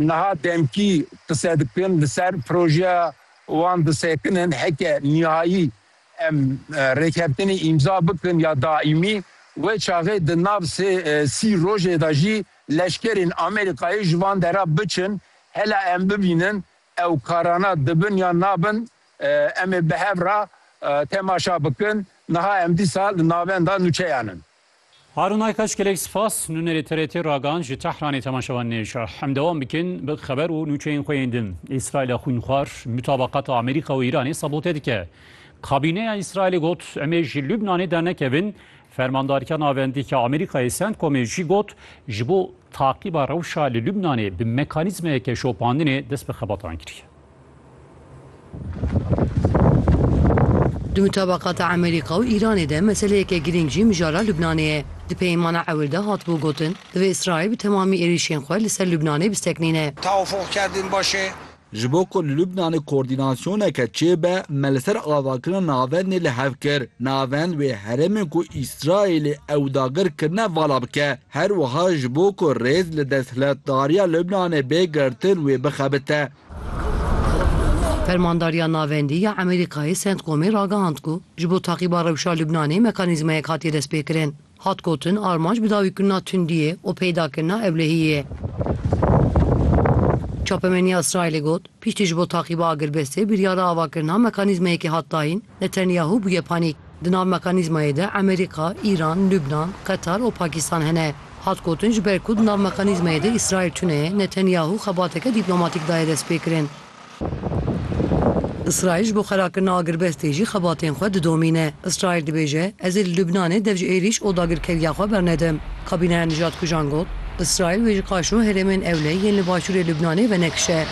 Niha demkî qise dikin li ser projeya wan disekinin heke nihayî em rêkeftinê îmza bikin ya daîmî. Wê çaxê di nav sê sî rojê de jî leşkerên Amerîkayê ji van dera biçin. Hela em bibînin ew karana dibin yan nabin em ê bi hev re temaşa bikin. Niha em dîsa li navenda nûçeyan in. Harun Aykaç gelek spas nûnerê TRT ragihan ji Tehranê temaşevan nêşa em dewam bikin bi xeber û nûçeyên xwe yên din. Îsraîla xwînxwar mutabaqata Amerîka û Îranê sabote dike. Kabîneya Îsraîlê got em ê ji Lubnanê dernekevin. Fermandarîya Navendî ya Amerîkayê Centcomê jî got ji bo taqîba rewşa li Lubnanê bi mekanîzmeyeke şopandinê dest bi xebatan kiriye. Di mutabaqata Amerîka û Îranê de meseleyeke girîng jî mijara Lubnanê ye. Di peyêmana ewil de hatibû gotin, divê Îsraîl bi temamî êrîşên xwe li ser Lubnanê bisteqnîne. Tewafuk kerdîn baş e. Ji bo ku li Lubnanê koordînasyoneke çêbe, me li ser avakirina navendê li hev kir. Navend wê herêmên ku Îsraîlê ew dagir kirine vala bike. Her wiha ji bo ku rêz li desthilatdariya Lubnanê bê girtin wê bixebite. Fermandariya Navendî ya Amerîkayê Centcomê ragihand ku ji bo taqîba rewşa Lubnanê mekanîzmayek hatiye destpêkirin. Hat gotin, armanc bidawîkirina tundiyê û peydakirina ewlehiyê ye. Çapemeniya Îsraîlê got, Piştî ji bo taqîba agirbestê biryara avakirina mekanîzmayekê hat dayîn, Netanyahu bûye panî. Di nav mekanîzmayê de Amerîka, Îran, Lubnan, Qetar û Pakistan hene. Hat gotin ji ber ku di nav mekanîzmayê de Îsraîl tune ye, Netanyahu xebateke dîplomatîk daye destpêkirin. Îsraîl ji bo xerakirina agirbestê jî xebatên xwe didomîne. Îsraîl dibêje, Ez ê li Lubnanê dev ji êrîş û dagirkeriya xwe bernedim. Kabîneya Nijadkujan got, Îsraîl wê ji qaşo herêmên ewle yên li başûrê Lubnanê venekişe.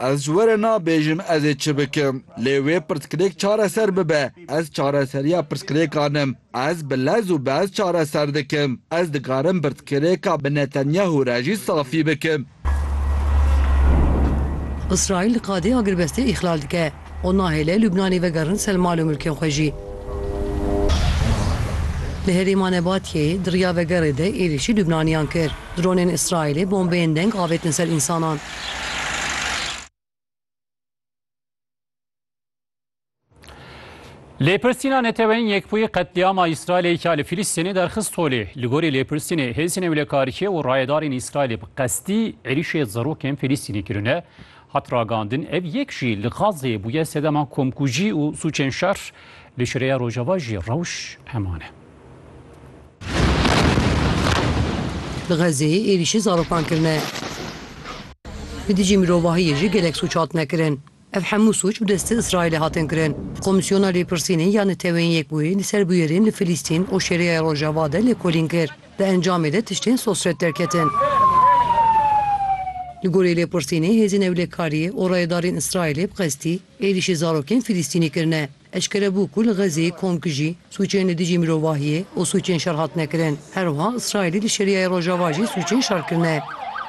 Ez ji we re nabêjim ez ê çi bikim, lê wê pirsgirêk çareser bibe. Ez çareseriya pirsgirêkan im. Ez bi lez û bez çareser dikim. Ez dikarim pirsgirêka bi Netanyahu re jî safî bikim. Îsraîl qadê agirbestê îxlal dike. û nahêle Lubnanê vegerin ser mal û milkên xwe jî. Li herêma Nebatiyeyê di riya vegerê de êrîşî Lubnaniyan kir. Dronên Îsraîlê bombeyên deng avêtin ser însanan. Lêpirsîna Neteweyên Yekbûyî qetlîama Îsraîlê ya li Fîlîstînê derxist holê. Li gorî lêpirsînê hêzên ewlekariyê û rayedarên Îsraîlê bi qestî êrîşê zarokên Fîlîstînê kirine. Hat ragandin ev yek jî li Gazeyê bûye sedema komkujî û sûcên şer, li Şireya Rojava jî rewş heman e. Li Gazeyê êrîşî zarokan kirine. Li dijî mirovahiyê jî gelek sûc hatine kirin. Ev hemû sûc bi destê Îsraîlê hatin kirin. Komîsyona Lêpirsînê ya Neteweyên Yekbûyî li ser bûyerên li Filîstîn û Şêreya Rojava de lêkolîn kir. Di encamê de tiştên sosret derketin. Li gorî lêpirsînê hêzên ewlekariyê û rayedarên Îsraîlê bi qestî êrîşî zarokên Filîstînî kirine. Eşkere bû ku li Xezeyê komkijî, sûcên li dijî mirovahiyê û sûcên şer hatine kirin. Her wiha Îsraîlê li Şerîayê Rojava jî sûcên şer kirine.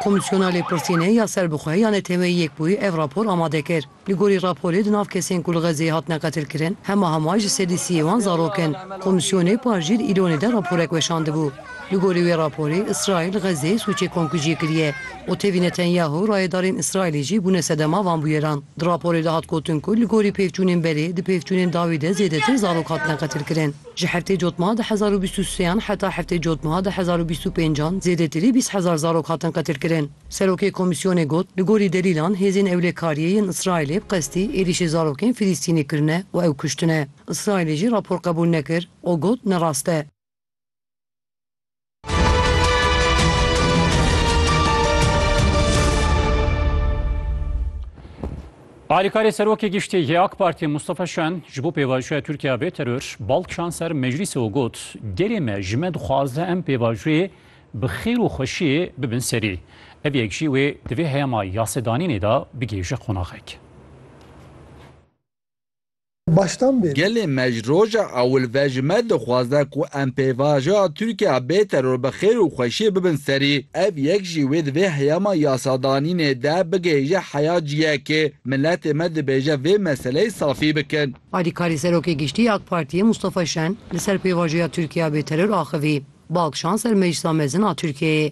Komîsyona Lêpirsînê ya Serbixwe ya Neteweyî Yekbûyî ev rapor amade kir. Li gorî raporê di nav kesên ku li Xezeyê hatine qetilkirin hema hema ji sedî sî yê wan zarok in. Komîsyonê par jî di Îlonê de raporek weşandibû. Li gorî wê raporê Îsraîl li Xezeyê sûcê komkujiyê kiriye û tevî Netanyahu rayedarên Îsraîlê jî bûne sedema van bûyeran. Di raporê de hat gotin ku li gorî pêvçûnên berê di pêvçûnên dawî de zêdetir zarok hatine qetilkirin. Ji heftê cotmeha du hezar û bîst û sê an heta heftê cotmeha du hezar û bîst û pênc an zêdetirî bîst hezar zarok hatin qetilkirin. Serokê komîsyonê got, Li gorî delîlan hêzên ewlêkariyê yên Îsraîlê bi qestî êrîşê zarokên Filîstînî kirine û ew kuştine. Îsraîlê jî rapor qebûl nekir û got ne rast e. Alîkarê Serokê Giştî yê AK Partiyê Mustafa Şen ji bo pêvajoya Tirkiya bê teror bal kişand ser meclîsê û got, Gerê me ji me dixwaze em pêvajoyê Bi xêr û xweşiyê bibin serî. Ev yek jî wê di vê heyama yasedanînê de bigê ji qonaxek. Baştan bê. Gelê me ji roja ewil ve ji me dixwaze ku em pêvajoya Tirkiya bê teror bi xêr û xweşiyê bibin serî. Ev yek jî wê di vê heyama yasadanînê de bigê ji heya ciyekê. Miletê me dibêje vê meseleyê safî bikin. Alîkarî Serokê Giştî ya AK Partiyê Mustafa Şen li ser pêvajoya Tirkiya bêteror axivî, Balkşan ser Meclisa Mezin a Tirkiyeyê.